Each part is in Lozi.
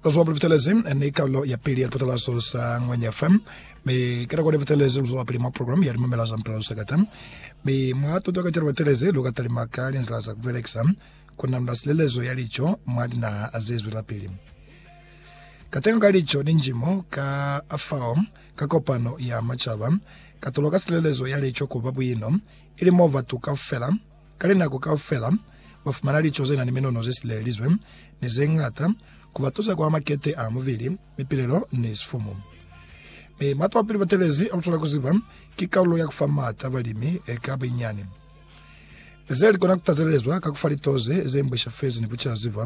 Luzuba puli butelezi ni karolo ya pili ya lipatalazo sa Ngwenya FM mi kata kone butelezi luzuba pili mwa program ya limamela za mpela lusakata mi mwa tuto ka celo batelezi lu ka talima ka linzila za kubelekisa ku nanula silelezo ya lico mwa dinaha ze zwela pili katengo ka lico ni njimo ka afao ka kopano ya macaba katulo ka silelezo ya lico kuba buino ili mo batu kaufela Ka linako kaufela, ba fumana lico ze na ni minono ze silelelizwe ni ze ñata ku ba tusa kwa makete a mubili, mipilelo, ni sifumu. Mi Matwapili Batelezi a lutwala ku ziba ki kalulo ya ku fa maata balimi ka buinyani. Ze li kona ku tazelezwa ka ku fa litoze ze mbwishafezi ni ku caziba,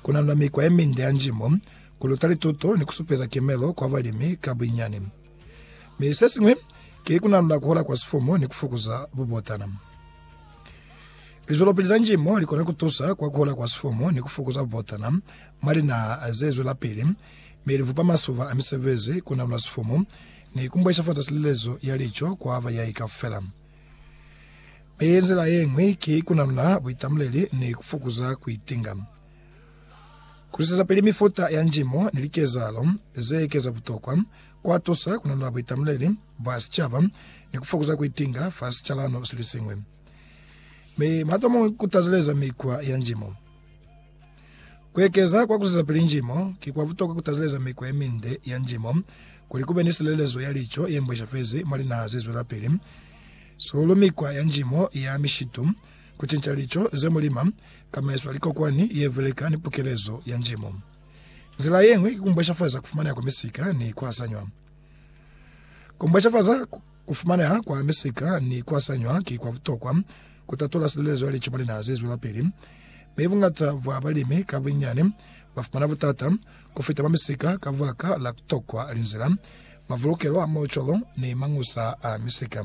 ku nanula mikwa ye minde ya njimo, ku luta lituto ni ku supeza kemelo kwa balimi ka buinyani. Mi sesiñwi ki kunanula kuhola kwa sifumu ni kufukuza bubotana. Lizwelopili za njimo likona kutusa kwa kuhola kwa sifumu ni kufukuza bubotana mwa linaha zezwelapili, mi livupa masuba a misebezi, kunanula sifumu, ni kumbweshafaza silelezo ya lico kwa bayai kaufela. Mi nzila yeñwi ki kunanula buitamuleli ni kufukuza kuitinga. Ku zwisezapili mifuta ya njimo ni likezahalo ze ekeza butokwa kwa tusa ku nunula buitamuleli bwa sicaba ni ku fokuza ku itinga fa sicalano se li siñwi. Mi matomo ku tazeleza mikwa ya njimo. Ku ekeza kwa ku zwisezapili njimo, ki kwa butokwa ku tazeleza mikwa ye minde ya njimo kuli ku be ni silelezo ya lico ye mbweshafezi mwa linaha ze zwelapili, sihulu mikwa ya njimo ya mishitu, Ku cinca lico ze mu lima ka maiswa a likokwani ye veleka ni pukelezo ya njimu. Nzila ye ñwi ki ku mbweshafaza ku fumaneha kwa misika ni ku hasanywa. Ku mbweshafaza ku fumaneha kwa misika ni ku hasanywa ki kwa butokwa ku tatola silelezo ya lico mwa linaha ze zwelapili, mi buñata bwa balimi ka bunyani ba fumana butata ku fita mwa misika ka baka la ku tokwa linzila, mavulukelo a maucwalo ni mañusa a misika.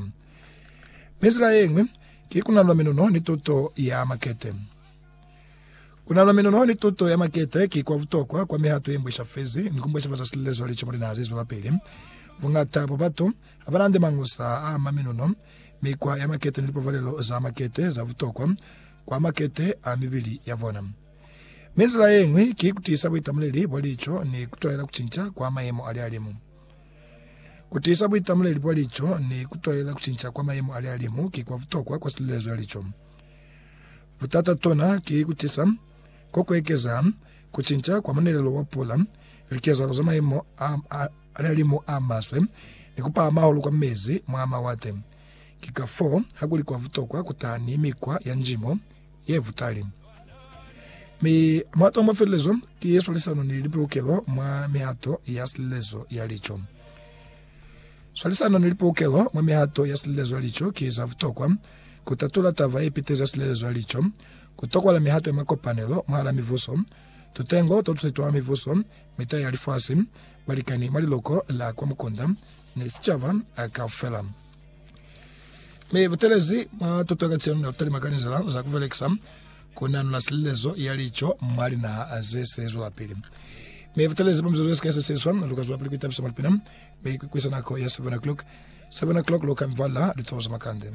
Mi zila yeñwi ki kunalula minuno ni tuto ya makete. Kunalula minuno ni tuto ya makete ki kwa butokwa kwa mihato ye mbwesha fezi ni ku mbweshafaza silezo lici mwa linaha ze zwelapili. Buñata bwa batu ha ba na nde mangusa a ama minuno, mikwa ya makete ni lipabalelo za makete za butokwa kwa makete a mibili ya bona. Mi zila yeñwi ki kutisa buitamuleli bwa lico ni kutwahela kucinca kwa mayemo a lihalimu. Ku tiisa buitamuleli bwa lico ni ku twaela ku cinca kwa mayemo a lihalimu ki kwa butokwa kwa silulezo ya lico. Butata tona ki ku tisa ko ku ekeza ku cinca kwa munelelo wa pula, likezahalo za mayemo a lihalimu a maswe, ni ku pahama hahulu kwa mezi mwa mawate. Ki ka foo ha ku li kwa butokwa ku taha ni mikwa ya njimo, ye butali. Mi mato a mafelelezo ki ye swalisano ni lipolokelo mwa mihato ya silelezo ya lico. Swalisano ni lipolokelo mwa mihato ya silelezo ya lico ki za butokwa ku tatula taba ye petezi ya silelezo ya lico, ku tokola mihato ya makopanelo mwahala mibuso, tutengo to tuse twa mibuso, mita ya lifasi, balikani mwa liloko la kwa mukunda, ni sicaba kaufela. Mi butelezi bwa tuto ka cenu nabutali mwa kanizela za kubelekisa kunanula silelezo ya lico mwa linaha ze sezwelapili. Mi butelezi bwa mizuzu yesika yesesiswa lukazwelapili kuitabisa mwa lipina mi kuikwisa nako ya 7 o'clock. 7 o'clock luka mvala litoho za makande.